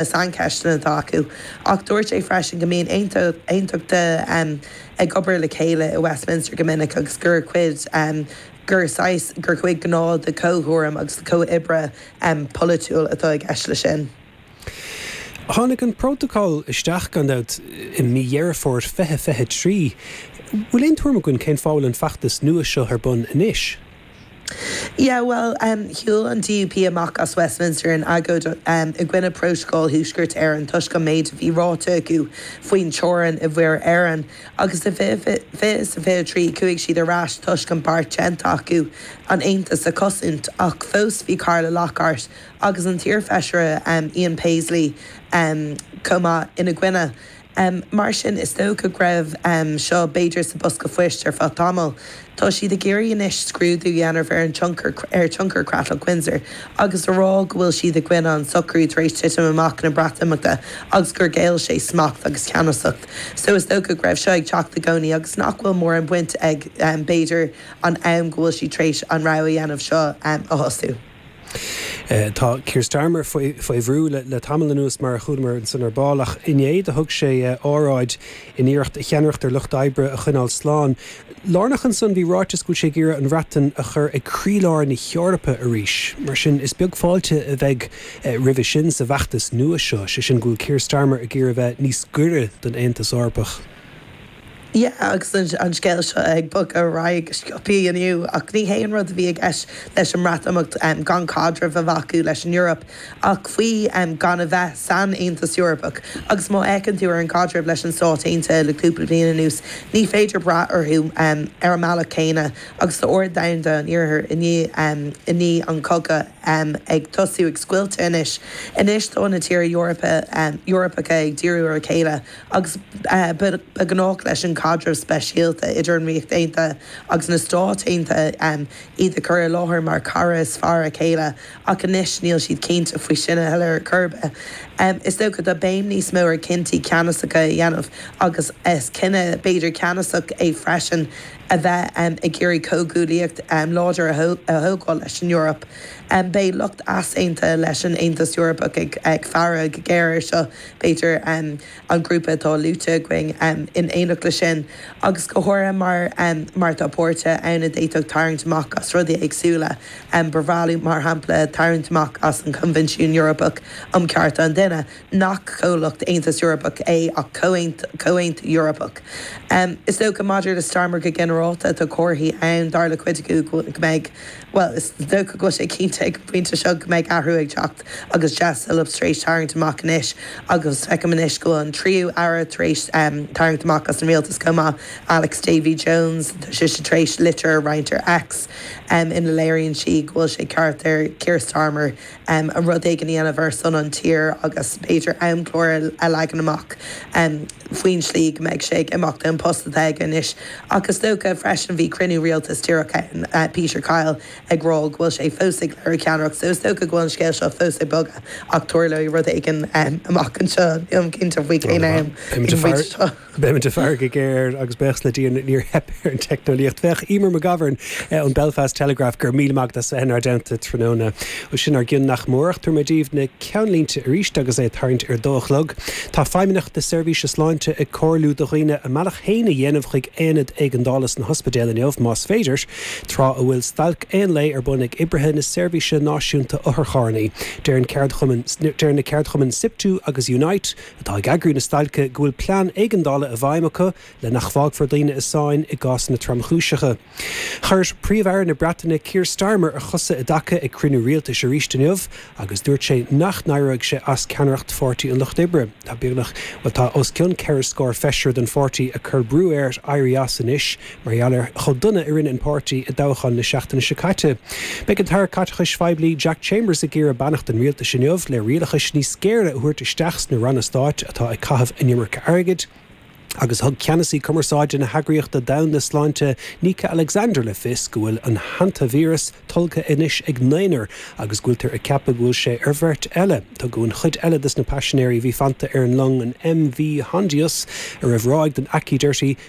na saincheisteanna atá acu, ach dúirt sé freisin go mbíonn aontachtaithe ag obair le chéile i Westminster go minic agus gur cuid, gur saghas, gur chuid gnách de chomhthuairim agus de chomhoibre polaitiúil atá i gceist leis sin. Tháinig an Prótacal isteach, gan dabht, i mí Dheireadh Fómhair 2023. Bhfuil aon tuairim againn cén fáth a bhfuil an feachtas nua seo ar bun anois? Yeah, well, shiúil an DUP amach as Westminster in agóid i gcoinne Prótacal Thuaisceart Éireann toisc an méid a bhí ráite acu faoin teorainn i Muir Éireann, agus i 2023 chuaigh siad ar ais toisc an bearta déanta acu an tAontas a chosaint, ach fós bhí Carla Lockhart agus an t-iarfheisire Ian Paisley chomh maith ina gcoinne. Mar sin, is dócha go raibh seo b'fhéidir sa bosca phoist ar feadh tamaill. Tá siad ag iarraidh anois scrúdú a dhéanamh ar an tionchar, ar thionchar Chreatlach Windsor agus a rá go bhfuil siad i gcoinne an socrú tar éis titim amach na Breatimeachta agus gur ghéill sé smacht agus ceannasacht. So is dócha go raibh seo ag teacht i gcónaí agus nach bhfuil mórán baint ag b'fhéidir an am go bhfuil siad tar éis an rogha a dhéanamh seo a thosú. Tá Keir Starmer faoi bhrú le tamall anuas, mar a chualamar ansan ar ball, ach inné do thug sé óráid in iarracht a cheannaireacht ar Lucht Oibre a choinneáil slán. Lárnach ansan bhí ráiteas go bhfuil sé ag iarraidh an Bhreatain a chur ag croílár na hEorpa arís. Mar sin is beag fáilte a bheidh roimhe sin sa bhfeachtas nua seo, sé sin go bhfuil Keir Starmer ag iarraidh bheith níos gaire don Aontas Eorpach. Yeah, agus an scéal seo ag bogadh ar aghaidh go sciopthaí inniu, ach ní hé an rud a bhí i gceist leis an mBreatimeacht, gan caidreamh a bheith acu leis an Eoraip, ach faoi gan a bheith san Aontas Eorpach. Agus má fhéachann tú ar an gcaidreamh leis na Stáit Aontaithe le cúpla bliain anuas, ní féidir brath orthu ar an mbealach céanna, agus tá ord domhanda an Iarthair i ndiaidh an cogadh ag tosú ag scoilteadh anois. Anois tá na tíortha Eorpacha ag díriú ar a chéile. agus ba ghnách leis an chaidreamh speisialta idir an Ríocht Aontaithe agus na Stáit Aontaithe iad a chur i láthair mar chara is fearr a chéile, ach anois níl siad cinnte faoi sin a thuilleadh ar chor ar bith. Is dócha tá béim níos mó ar chinntí ceannasacha a dhéanamh, agus is cinneadh b'fhéidir ceannasach é freisin a bheith ag iarraidh comhghuaillíocht láidir a thógáil leis an Eoraip. Beidh lucht easaontaithe leis an Aontas Eorpach ag faire go géar air seo, b'fhéidir, an grúpa atá luaite againn. In éineacht le sin, agus go háirithe mar mar tá páirtithe ann a d'fhéadfadh tarraingt amach as rudaí éagsúla, ba bhreá leo, mar shampla, tarraingt amach as an Coinbhinsiún Eorpach um Chearta an Duine, nach comhlacht Aontas Eorpach é ach comhaontú Eorpach. Is dócha, maidir le Starmer go ginearálta, tá comharthaí ann, dar le cuid inniu, go mbeidh. Bhuel, is dócha go bhfuil sé cinnte ag an bpointe seo go mbeidh athrú ag teacht agus Jess Phillips tar éis tarraingt amach anois agus feicim anois go bhfuil an tríú aire tar éis tarraingt amach as an rialtas chomh maith, Alex Davies-Jones. Tá sise tar éis litir a roinnt ar X ina léiríonn sí go bhfuil sé ceart ar Keir Starmer um rud éigin a dhéanamh ar son an tír agus b'fhéidir amchlár a leagan amach um faoin slí go mbeidh sé ag imeacht ón post atá aige anois. Ach is dócha freisin bhí cruinniú rialtas díreach ann, uh Peter Kyle ag rá go bhfuil sé fós ag léiriú ceannaireacht, so is dócha go bhfuil an scéal seo fós ag bogadh ach tarlóidh rud éigin um amach anseo, nílim cinnte faoi cén am, Beimid ag faire go géar agus buíochas le Dia níor theip ar an teicneolaíocht. Féach, Eimear McGovern ón Belfast Telegraph go raibh míle maith agat as a bheith inár dteannta tráthnóna. Bhuel sin ár gcion nach mór ach tabharfaidh mé daoibh na ceannlínte aríst agus é ag tarraingt ar a dó a chlog. Tá Feidhmeannacht na Seirbhíse Sláinte ag comhairliú do dhaoine a mbealach féin a dhéanamh chuig aonad éigeandála sna hospidéil inniu más féidir, tráth a bhfuil stailc aon lae ar bun ag oibrithe na seirbhíse náisiúnta otharcharrannaí. Deir ceardchuma deireann na ceardchumainn Siptu agus Unite, atá ag eagrú na stailce go bhfuil plean éigeandála i bhfeidhm acu le nach bhfágfar daoine i sáinn i gcásanna tromchúiseacha. Chuir Príomh-Aire na Breataine Keir Starmer a chosa i dtaca ag cruinniú rialtais aríst inniu agus dúirt sé nach n-éireoidh sé as ceannaireacht Pháirtí an Lucht Oibre. Tá beagnach, bhuel tá os cionn ceithre scór feisire den pháirtí ag cur brú air éirí as anois. Mar gheall ar chomh dona a rinne an páirtí i dtoghcháin na seachtaine seo caite, beidh an tAire Caiteachais Phoiblí Jack Chambers ag iarraidh beannacht an rialtais inniu le rialachas níos géire a thabhairt isteach sna ranna stáit atá ag caitheamh an iomarca airgid agus thug ceannasaí cumarsáide na hEagraíochta Domhanda Sláinte Nyka Alexander le fios go bhfuil an hantaivíreas tolgtha anois ag naonúr agus go bhfuiltear ag ceapadh go bhfuil sé ar bheirt eile. Tugadh an chuid eile dos na paisinéirí a bhí fanta ar an long an MV Hondius a raibh ráig den aicíd uirthi